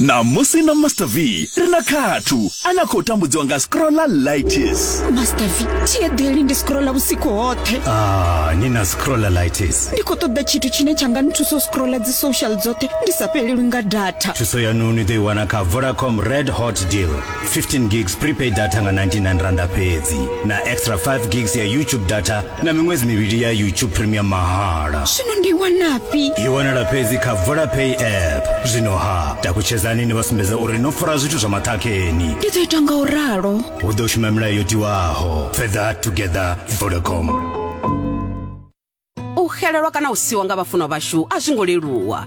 ṋamusi na master v ri na khathu a na khou tambudziwa nga scrolla litis master v tshiedeli ndi scrolla vhusiku hoṱhe ah, ni na scrolla litis ndi khou ṱoḓa tshithu tshine tsha nga nthusa u scrolla dzi social dzoṱhe ndi sa fhelelwi nga data thuso yanu ni ḓo i wana kha vodacom red hot deal 15 gigs prepaid data nga 99 randa fhedzi na extra 5 gigs ya youtube data na miṅwedzi mivhili ya youtube premium mahala zwino ndi wanafhi i wanala fhedzi kha vodapay app zwino ha takutshedzani ni vha sumbedza uri no fara zwithu zwa maṱhakheni ndi ḓo ita nga u ralo hu ḓo shuma milayo yo tiwaho fedha together vodacom u xelelwa kana u siwa nga vhafunwa vhashu a zwi ngo leluwa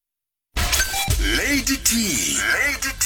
lady t lady t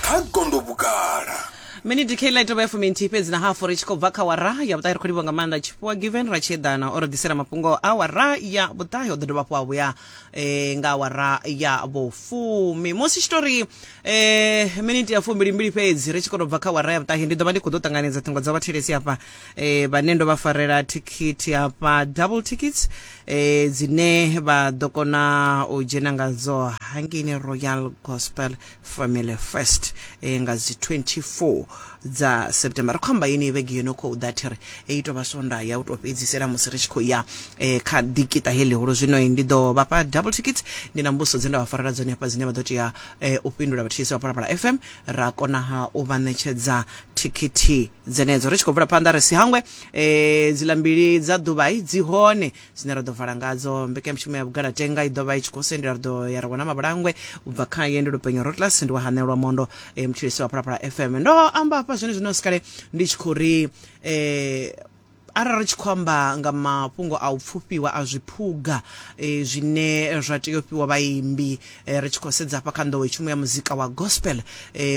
kha gondo vhugala miniti kheila i tovha ya fuminthihi fhedzi na hafu ri tshi khou bva kha wara ya vhuṱahi ri khou livha nga maanḓa tshifhiwa given ra tshi eḓana o ri ḓisela mafhungo a wara ya vhuṱahi o ḓo dovha hafhu a vhuya eh, nga wara ya vhufumi musi tshitori eh, miniti ya fumbilimbili fhedzi ri tshi khou tou bva kha wara ya vhuṱahi ndi ḓo vha ndi khou ḓo ṱanganedza ṱhingo dza vhathelesi hafha eh, vhane ndo vha farela thikhithi hafha double tickets eh, dzine vha ḓo kona u dzhena ngadzo hangini royal gospel family first eh, nga dzi 24 dza september ri khou amba yeni vhege yo no khou ḓa thi ri i tou vha swonda ya u tou fhedzisela musi ri tshi khou ya eh, kha dikita he ḽihulu zwino ndi ḓo vhafha double tickets ndi na mbuso dze nda vha farela dzone hafha dzine vha ḓo tea eh, u fhindula vhathetshelesi vha phalaphala fm ra konaha u vha ṋetshedza thikhithi dzenedzo ri tshi khou bvela phanḓa ri si hangwe um dziḽa mbili dza ḓuvha i dzi hone dzine ra ḓo vala ngadzo mbekanyamushumo ya vhugalatenga i ḓovha i tshi khou sendela ri ḓo ya ra wana mavhulangwe u bva kha ye ndi lupenyo rotlas ndi wa hanelwa mondo um eh, mutshilisi wa phalaphala fm ndo amba hafha zwone zwino sikale ndi tshi khou ri um Arali ri tshi khou amba nga mafhungo a u pfufhiwa a zwiphuga zwine zwa tea u fhiwa vhaimbi, ri tshi khou sedza hafha kha nḓowetshumo ya muzika wa gospel,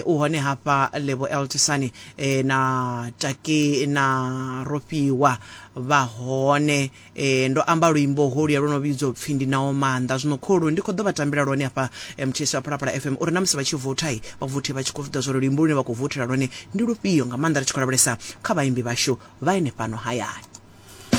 u hone hafha Lebo Eltisani na Taki na Rofhiwa vha hone. Ndo amba luimbo holuya lwo no vhidzwa u pfhi Ndi Nao Maanḓa. Zwino kholu ndi khou ḓo vha tambela lwone hafha muthetshelesi wa Phalaphala FM uri na musi vha tshi voutha, vha vouthe vha tshi khou zwi ḓivha zwa uri luimbo lune vha khou vouthela lwone Ndi lufhio, nga maanḓa ri tshi khou lavhelesa kha vhaimbi vhashu vha henefhano hayani?